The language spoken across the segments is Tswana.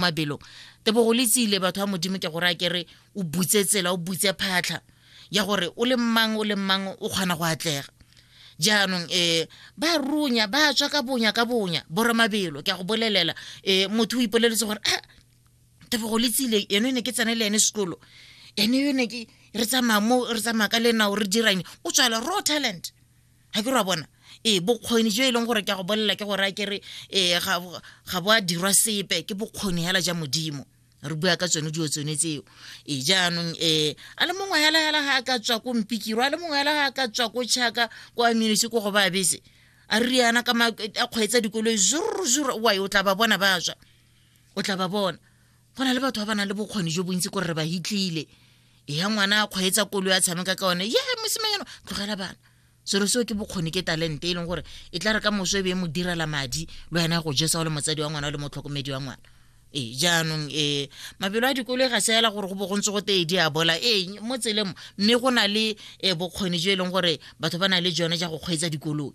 mabelo tebogo le tsile batho ba modimo ke gore a kere o butse tsela o butse phatlha ya gore o le mmang o le mmang o kgona go atlega jaanong um ba runya ba tswa ka bonya ka bonya bora mabelo ke a go bolelela um motho o ipoleletse gore a ah, tebogo le tsile eno e ne ke tsene le ene sekolo ene yone ke re tsamaya mo re tsamaya ka lenao re dirang o tswala raw talent ga ke ra bona ee bokgoni jo e leng gore ke a go bolelela ke gore a kere ee ga bo a dirwa sepe ke bokgoni hela ja modimo re bua ka tsone dilo tsone tseo e jaanong um a le mongwe hela hela ga a ka tswa ko mpikiro a le mongwe hela ga a ka tswa ko chaka ko aminisi ko go ba bese a re yana ka a kgweetsa dikoloi zuruzuru wa o tla ba bona ba tswa o tla ba bona go na le batho ba ba nang le bokgoni jo bontsi kore re ba hitlile ya ngwana a kgweetsa kolo ya tshameka ka one ye mosimanyano tlogela bana selo seo ke bokgoni ke talente e leng gore e tla re ka moso e be e mo direla madi le wena go jesa o le motsadi wa ngwana o le motlhokomedi wa ngwana ee jaanong ee mabelo a dikolo e ga se ela gore go bo go ntse go tee di a bola ee mo tselemo mme go na le um bokgoni jo e leng gore batho ba na le jone ja go kgweetsa dikoloi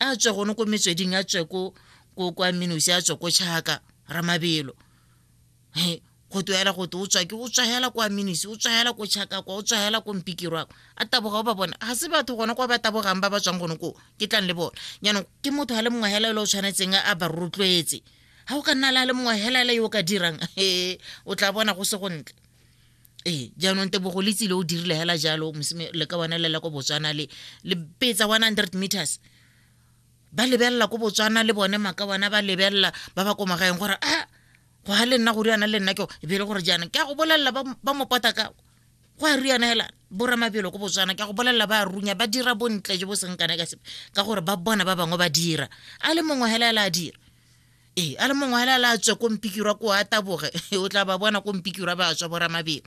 a tswe gone ko metsweding a tswe ko ko kwa minosi a tswe ko chaka ramabelo he go toela go te o tswa ke o tswahela kwa minisi o tswahela ko chaka kwa o tswahela ko mpikiro ako a taboga o ba bona ga se batho gona kwa ba tabogang ba ba tswang gone koo ke tlang le bona jaanong ke motho a le mongwe hela e le o tshwanetseng a ba rotloetse ga o ka nna le a le mongwe hela e le yo o ka dirang e o tla bona go se go ntle ee jaanong tebogo le tsile o dirile hela jalo le ka bona lela ko botswana le le petsa 100 meters ba lebelela ko botswana le bone maka bona ba lebelela ba ba ko magaeng gore a ah, go ga le nna go riana le nna ke e bele gore jaanong ke a go bolelela ba mopota ka go a riana hela boramabelo ko botswana ke a go bolelela ba runya ba dira bontle jo bo seng kana ka sepe ka gore ba bona ba bangwe ba dira a le mongwe hela hela a dira ee a le mongwe hela la tswe ko mpikirwa ko a taboge o tla ba bona ko mpikirwa ba tswa boramabelo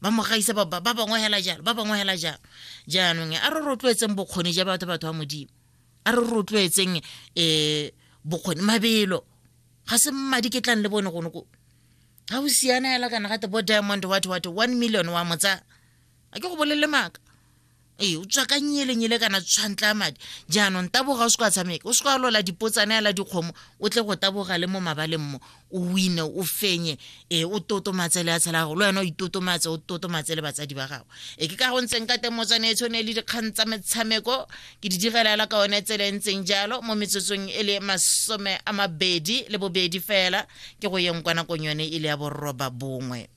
ba mo gaisa ba bangwe hela jalo ba bangwe hela jalo jaanong a re rotloetseng bokgoni ja batho batho ba modimo a re rotloetseng um bokgoni mabelo ga se mmadi ke tlang le bone gone ko ga o siana hela kana gate bo diamond what what one million wa motsa a ke go bolelele maaka ee o tswa ka nyelenyele kana tshwantla madi jaanong taboga o se kwa tshameka o se kwa lola dipotsane ya la dikgomo o tle go taboga le mo mabaleng mo o wine o fenye ee o totomatse le ya tshela gago le wena o itotomatse o totomatse le batsadi ba gago e ke ka go ntseng ka teng motswane e tshwane le dikgang tsa metshameko ke di direlela ka one tsela e ntseng jalo mo metsotsong e le masome a mabedi le bobedi fela ke go yeng kwa nakong yone e le ya borroba bongwe